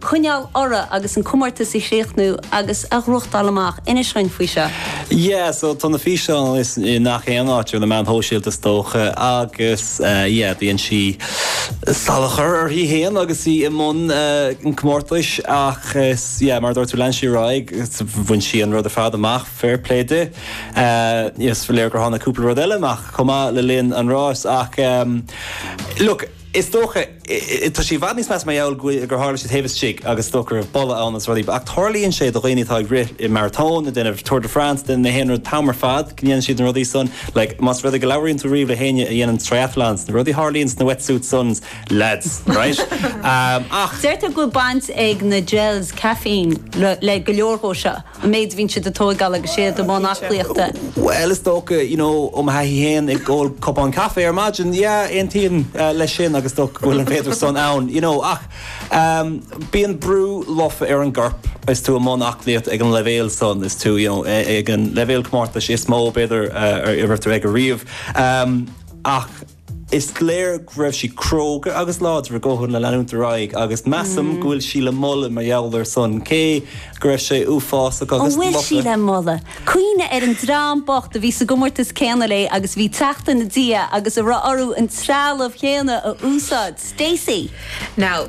choinneáil orthu agus an comórtas a chríochnú agus a ghnóchtáil amach. Inis dhuinn faoi seo. Yeah so tá na físeáin i ngach aon áit ar na meáin shóisialta is dócha agus yeah bíonn sí salachar uirthi fhéin agus í i mbun an comórtais ach is yeah mar a dúirt tú lean sí ar aghaidh bhain sí an rud ar fad amach fair play di is léir gur tháinig cúpla rud eile amach chomh maith le linn an rás ach look Is dócha, tá sé i bhfad níos measa mar gheall gur tharla sé taobh istigh agus is dócha go raibh boladh ann agus rudaí, ach tarlaíonn sé do dhaoine atá ag rith i maratón, ag déanamh Tour de France, den aon rud, an t-am ar fad go ndéanann siad na rudaí san, like, más rud é go labhraíonn tú riamh le héinne a dhéanann triathlons, na rudaí a tharlaíonn sna wetsuits san, leaids, right? Ach. Deirtear go bhfuil baint ag na gels caffeine le go leor dhó seo. An méid a bhíonn siad ag tóigeáil agus iad i mbun aclaíochta. Bhuel, is dócha, you know, ó mo thaithí féin, ag ól cupán caife ar maidin, yeah, aontaím leis sin agus is dócha go bhfuil an féidir san ann, you know. Ach ehm, bíonn brú lofa ar an gcorp is tú i mbun aclaíochta ag an leibhéal san, is tú, you know, ag an leibhéal comórtais is mó, b'fhéidir, a raibh tú aige riamh. Ehm, ach. Is léir go raibh sí cróga agus láidir i gcomhair leanúint ar aghaidh agus measaim go bhfuil sí le moladh mar gheall ar san cé go raibh sé uafásach agus lofa. An bhfuil sí le moladh? Cuimhnigh ar an dream bocht a bhí sa gcomórtas céanna léi agus bhí ag teacht ina diaidh agus a raibh orthu an trealamh chéanna a úsáid. Stacey. Now,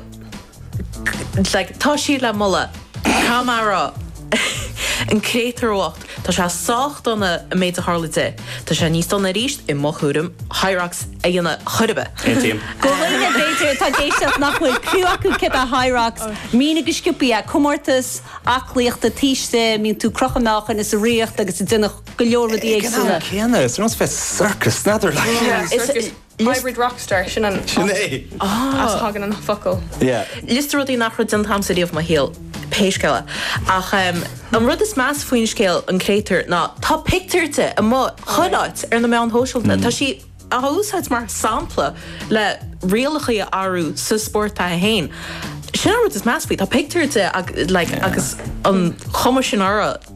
like tá siad le moladh. Tá mé ag rá, an créatúr bhocht, tá sé sách dona an méid a tharla di. Tá sé níos dona arís, i mo thuairim, Hyrox a dhéanamh chor ar bith. Aontaím. Do dhaoine b'fhéidir atá ag éisteacht nach bhfuil cliú acu céard é Hyrox. Mínigh go sciopthaí é. Comórtas aclaíochta, taobh istigh, bíonn tú ag crochadh meáchain is ag rith agus ag déanamh go leor rudaí éagsúla. Ag an am céanna, is ar nós bheith sa sorcas, n'fheadar, like. Yeah, is. Liosta. Hybrid rock star, sin an Sin áit é! as a thagann an focal. Yeah. Liosta rudaí nach raibh déanta agamsa riamh i mo shaol, pé scéal é. Ach an rud is measa faoin scéal, an créatúr, ná tá pictiúr di amuigh chuile áit ar na meáin shóisialta. Tá sí á úsáid mar sampla le rialacha a shárú sa spórt atá aici féin. Sin an rud is measa faoi, tá pictiúr di agus an chuma sin uirthi.